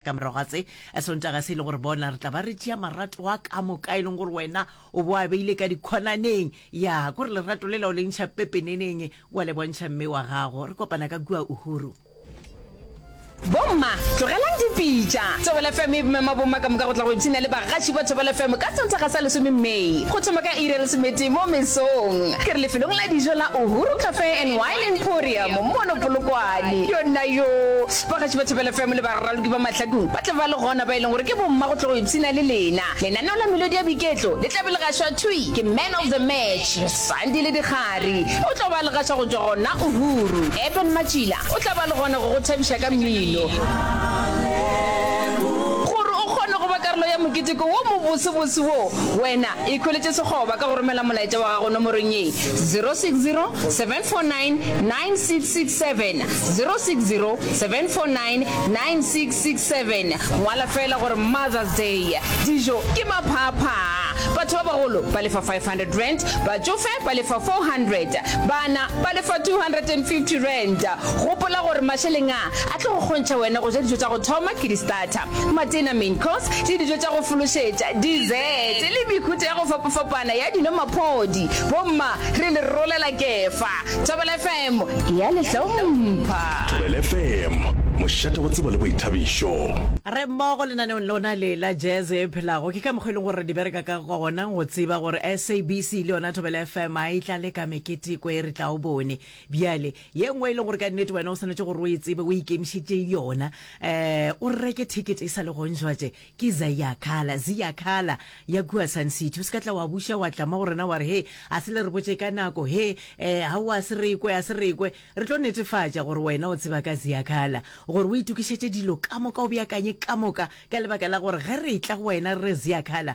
Ka morago ga se, Esontaga se e le gore bona re tla ba re tšea marato a ka moka e leng gore wena o bo a beile ka dikhonaneng. Ya, ko re lerato le la o le ntšha pepeneneng, wa le bontšha mme wa gago. Re kopana ka kua Uhuru. Bomma, tlogelang dipitša. Thobela FM e mema bomma ka moka go tla go ipshina le bagatši ba Thobela FM ka Sontaga sa lesome May, go thoma ka iri ya lesometee mo mesong. Ke re lefelong la dijo la Uhuru Cafe and Wine Emporium mono Polokwane. Yona yoo! Ba Gaši ba Thapelo FM le baraloki ba Mahlakong ba tla ba le gona ba e leng gore ke bomma go tlo go ipshina le lena. Lenaneo la Melodi ya Boiketlo le tla be le gašwa thwi ke Man of the Match, Sandile Dikgari. O tlo ba le gaša go tšwa gona Uhuru. Eben Matšila o tla ba le gona go go thabiša ka mmino. Gore o kgone go ba karolo ya moketeko wo mobosebose wo, wena Ikhweletše sekgoba ka go romela molaetša wa gago nomorong ye, 0607499667, 0607499667. Ngwala feela gore Mother's Day, dijo ke maphaaphaa, batho ba bagolo ba lefa R500, batšofe ba lefa R400, bana ba lefa R250. Gopola gore mašeleng a a tlo go kgontšha wena go ja dijo tša go thoma ke di-starter. Matena, main course, le dijo tša go fološetša, dessert, le mehuta ya go fapafapana ya dino-maphodi. Bomma, re le rolela kefa. Thobela FM e a le hlompha. Thobela FM, mošate wa tsebo le boithabišo. Re mmogo lenaneong lona le la Jazz e Phelago. Ke ka mokgwa e leng gore re di bereka ka gona, go tseba gore SABC le yona Thobela FM a e tlale ka meketeko e re tla o bone. Bjale, ye nngwe e le gore ka nnete wena o swanetse gore o e tsebe o ikemišetše yona um o reke ticket e sa le gonjwatše ke zayakala ziyakala ya kua sun city o se ka tla wa buša wa tlama go rena wa re he a se le re botše ka nako he um ga o a se rekwe a se rekwe re tlo netefatša gore wena o tseba ka ziyakala gore o itokišetše dilo ka moka o beakanye ka moka ka lebaka la gore ge re tla go wena re re ziyakala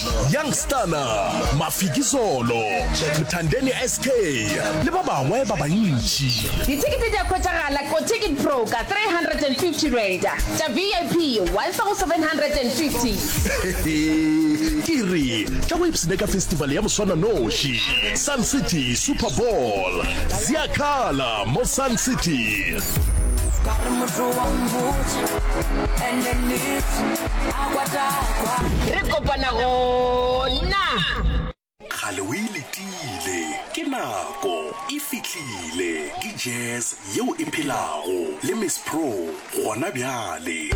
Young Stana, Mafiki Zolo, Mthandeni SK le ba bangwe ba bantši. Dithekete di a hwetšagala ko Ticket Pro ka R350, tša VIP 1,750. Ke re tla o ipshine ka festival ya moswananoši, Sun City Super Bowl. Zi a khala mo Sun City. Re kopana gona. Kgale o e letile. Ke nako e fihlile. Ke jazz yeo e phelago. Le Miss Pro gona bjale.